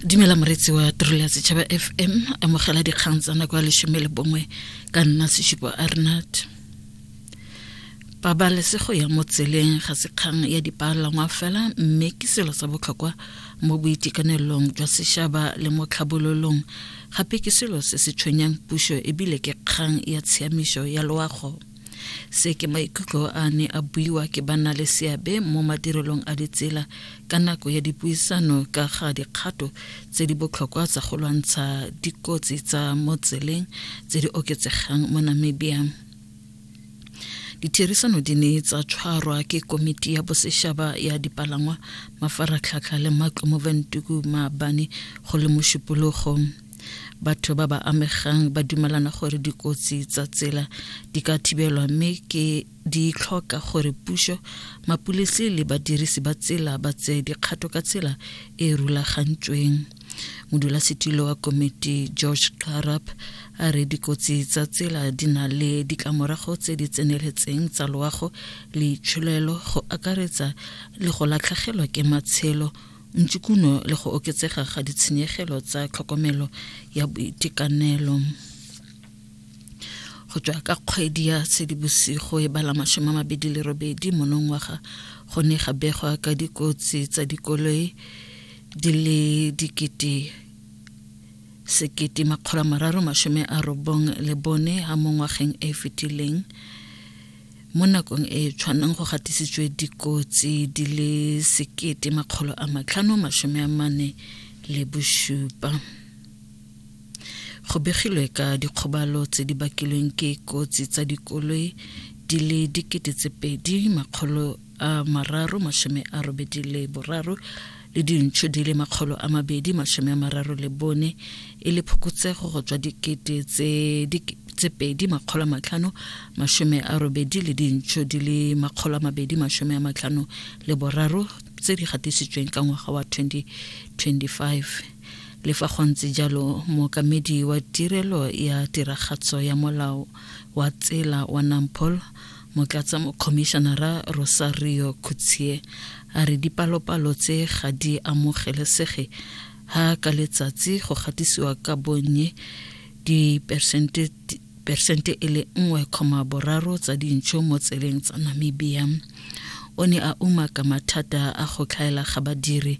dumela moretsi wa tirelo ya setšhaba fm amogela dikgang tsa nako ya lesome le bongwe ka nna sešupo arnat pabalesego ya mo tseleng ga se kgang ya dipalangwa fela mme ke selo sa botlhokwa mo boitekanelong jwa sešhaba le mo tlhabololong gape ke selo se se tshwenyang puso ebile ke kgang ya tshiamišo ya loago se ke maikutlo a ne a buiwa ke banna le seabe mo madirelong a ditsela ka nako ya dipuisano ka ga dikgato tse di botlhokwa tsa go lwantsha dikotsi tsa mo tseleng tse di oketsegang mo namibia ditherisano di ne tsa tshwarwa ke komiti ya bosešaba ya dipalangwa mafaratlhatlha le matlo mo ventuku maabane go le mošupologo batho ba ba amegang ba dumelana gore dikotsi tsa tsela di ka thibelwa mme ke di tlhoka gore puso mapulisi le badirisi ba tsela ba tseye dikgato ka tsela e e rulagantsweng modulasetilo wa komiti george carap a re dikotsi tsa tsela di na le ditlamorago tse di tseneletseng tsa loago le itsholelo go akaretsa le go latlhegelwa ke matshelo ntšikuno le go oketsega ga ditshenyegelo tsa tlhokomelo ya boitekanelo go tswa ka kgwedi ya sedibosigo e bala masome a mabedi le robedi monongwaga go ne ga begwa ka dikotsi tsa dikoloi di le dikete sekete makgolo mararo masome a robong le bone ga mo ngwageng e fetileng mo nakong e e tshwanang go gatisitswe dikotsi di le sekete makgolo a matlhano masome a mane le bosupa go begilwe ka dikgobalo tse di bakilweng ke kotsi tsa dikoloi di le dikete tse pedi makgolo a mararo masome a robedi le boraro le dintšho di le makgolo a mabedi masome a mararo le bone e le phokotsego go tswa dikete tse tse pedi makgolo a matlhano masome a robedi le dintšho di le makgolo a mabedi masome a matlhano le boraro tse di gatisitsweng ka ngwaga wa 2025 le fa go ntse jalo mookamedi wa tirelo ya tiragatso ya molao wa tsela wa nampol motlatsa mokhomišenara rosario khutsie a re dipalopalo tse ga di amogelesege ha ka letsatsi go gatisiwa ka bonnye dipersente persente e le nngwe kgoma boraro tsa dintšho mo tseleng tsa namibia o ne a umaka mathata a go tlhaela ga badiri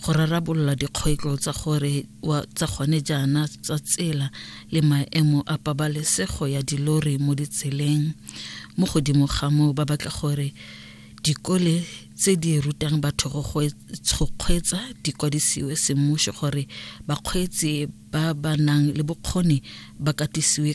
go rarabolola dikgwetlo tsa gore wa tsa gone jaana tsa tsela le maemo a pabalesego ya dilori mo ditseleng mo godimo ga moo ba batla gore dikole tse di rutang batho go kgweetsa di kwadisiwe semmušo gore bakgweetsi ba ba nang le bokgoni ba katisiwe